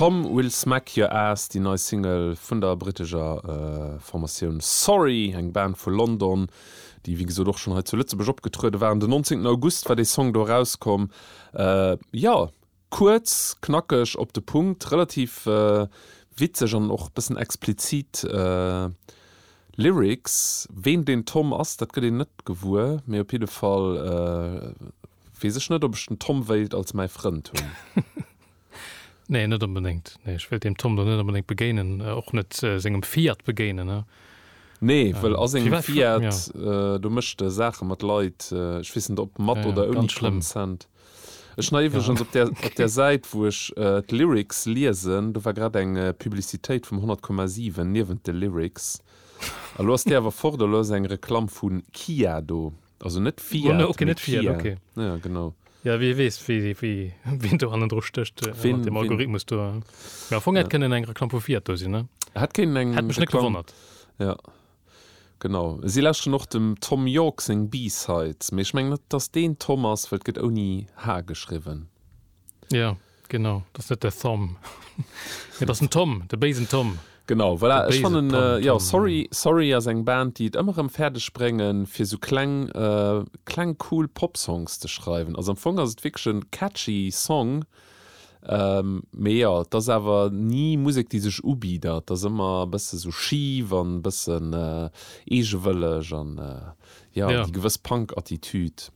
Tom Will Smack Your Ass, déi nei Single vun der brittescher Formatioun Sorry, eng Band vu London, déi wéi gesot och schonn hei zu Lëtzebuerg opgetruede waren. Den 19 August war dee Song do erauskomm. Jo, kuerz, knackeg, op de Punkt, relativ witzeg an och e bëssen explizit Lyrics. Ween den Tom ass, dat gëtt een net gewuer, mee op jidde Fall Wees ech net op ech den Tom wéilt als mäi Frënd hunn. Nee, net onbedéngt. Nee, ech wéilt dem Tom do net onbedéngt begéinen, och net sengem Fiat begéinen, ne. Nee, wëll a sengem Fiat, do mécht e Saache mat Leit, ech weess net ob mat oder ouni Consent. Ech nei iwwregens op där op där Säit wou ech d'Lyrics liesen, do war grad eng Publicitéit vum 100,7 niewent de Lyrics. Elo ass déi awer fort, elo ass eng Reklamm vu Kia do. Also net Fiat, no, okay, net Fiat, Kia. Okay. Ja, genau. Ja, wie wees, wie, wie, wie, wien do hannen dru stécht, äh, Wien- dem wien- Algorithmus do. äh. Ja, am Fong hätt kënnen eng Reklamm vu Fiat do sinn, ne? Hat keinen eng Hätt mech net Reklamm- gewonnert. Ja. Genau. Si läschen och dem Thom Yorke seng B-Sides. Mee ech mengen net, dass deen Thom ass, well et gëtt ouni H geschriwwen. Ja. Genau, dat ass net de Thom, mee dat ass den Tom, de béisen Tom. Genau, voilà, ech fannen, jo, Sorry Sorry ass eng Band, déi et ëmmer erëm fäerdeg bréngen, fir esou kleng, kleng cool Pop-Songs ze schreiwen. Also am Fong ass et wierklech e catchy Song, mee jo, et ass awer ni Musek, déi sech ubitt. Et ass ëmmer e bësse sou schif an e bëssen eegewëlleg an, jo, déi gewëss Punk-Attitüd.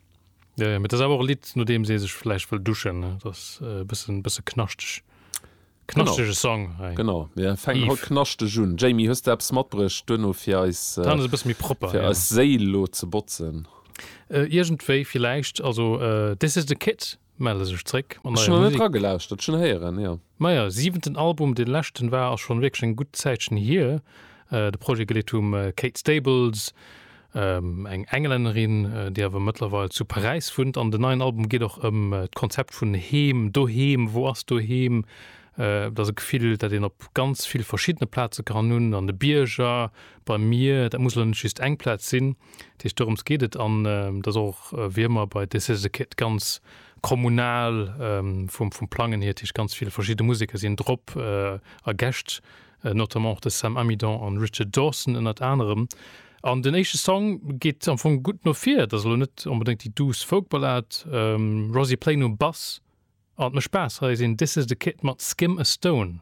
Ja, ja, das awer och Lied no deem see sech vläicht wëll duschen das bëssen bësse knaschteg knaschtege Song hey. Genau ja, feng haut knaschteg un Jamie hues der Apps matbrecht duno fir eis äh, bësse méi propper fir ja. eis Séil lo ze botzen. Äh, Iergendwéi villäicht also äh, This is the Kid melle sech zréck. Ech hun net dra gelauschtert, schon héieren ja. Majo, siwenten Album, dee leschten war ass schon wierklech eng gutt Zäitchen hier. De Projet geleet um Kate Stables, eng Englännerin, déi awer mëttlerweil zu Paräis wunnt. An den neien Album geet och ëm d'Konzept vun Heem, Doheem, wou ass Doheem? Et ass e Gefill, dat een op ganz vill verschiddene Plaze kann hunn, an de Bierger, beim Mier, dat muss elo net just eng Plaz sinn. Dat heescht, dorëms geet et an et ass och wéi ëmmer bei Decisions a Kid ganz kommunal vum Plangen hier. Dat heescht, ganz vill verschidde Museker sinn drop a Gäscht, notamment och de Sam Amidon an Richard Dawson ënnert anerem. An den éischte Song geet am Fong gutt no vir. Et ass elo net onbedéngt déi douce Folk-Ballad. Rosie Plain um Bass an et mécht Spaass. Hei sinn Decisions a Kid mat Skim a Stone.